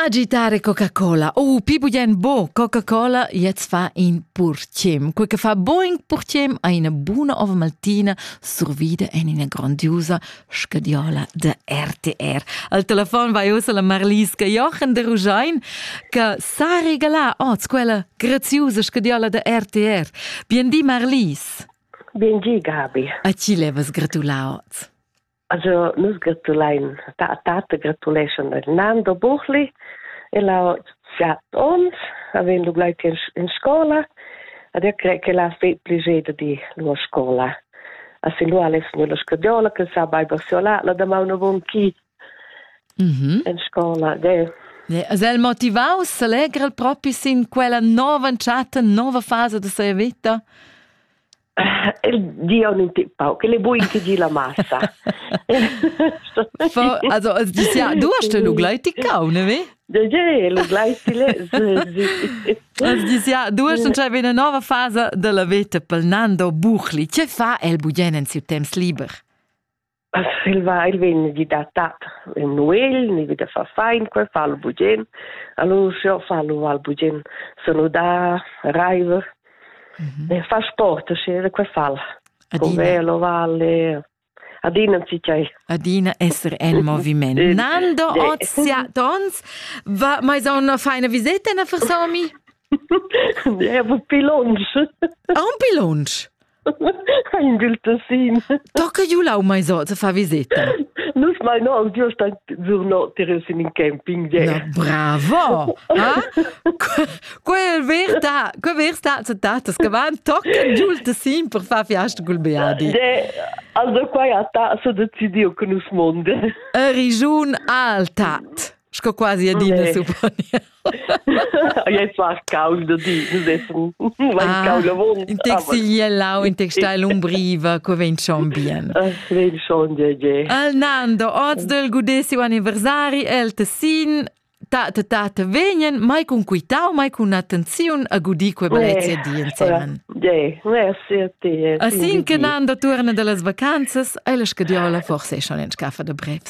Agitare Coca-Cola. Oh, pi bugen bo Coca-Cola jetzt fa in purciem. Quel che fa boing purciem ha una buona ova maltina survida in una grandiosa scadiola da RTR. Al telefon vai usa la Marliska Jochen de Rugein che sa regala oz quella graziosa scadiola da RTR. Bien di Marlis. Bien di Gabi. A ci levas gratulau oz? Also nus gratulein ta tate gratuleschan a Nando Buchli e la chat ons avem lu gleiti in, in scola ad e cre che la fe pligeda di lua scola a sin lu alles nella scadiola che sa bai basiola la da mauna von chi mhm in scola de Es el motivaus, s'allegra el propi sin quella nova chat, nova fasa da sia vita? El di on in tip pau, che le buin che gi la massa. Also, also ja, du hast den Ugleich tickau, ne wie? Ja, l'ugleich tile. Ja, du hast schon eine neue Phase della vita pel Nando Buchli. Che fa el bugen in siu temps liber? il va il vegn di da tat il Noel ni vi da fa fein que fa lu bugen allora io fa lu al bugen saludar Reiver mhm. e fa sport sce que fal con velo valle adina si cai adina esser en moviment Nando Ozia Dons va mai so una feina visita na versomi Ja, wo pilonsch. Un pilonsch. ein gilt de sin. Da che giu lau mai so te fa visita. Nus mai no an giu sta giurno tire sin in camping je. Na, bravo. Ha? Quel verta, que versta se tatas che van tocken giul te sin per fa fiasta col beadi. Je, also quai ha ta so decidio con us monde. E rigiun altat. Sco quasi adina supponia. Ei svarcau da di, nus essan ah, In textiglia lau, in textil umbriva, co vegn schon bien. Ah, vegn schon, je, je. Al Nando, oz del gudesi anniversari el tessin, tate tate vegnen mai con quitau, mai con attenziun a gudi que bellezia di insieme. Je, merci a te. Asin che Nando torna dalle vacanzas, e la scadiola forse è schon in scaffa da brevs.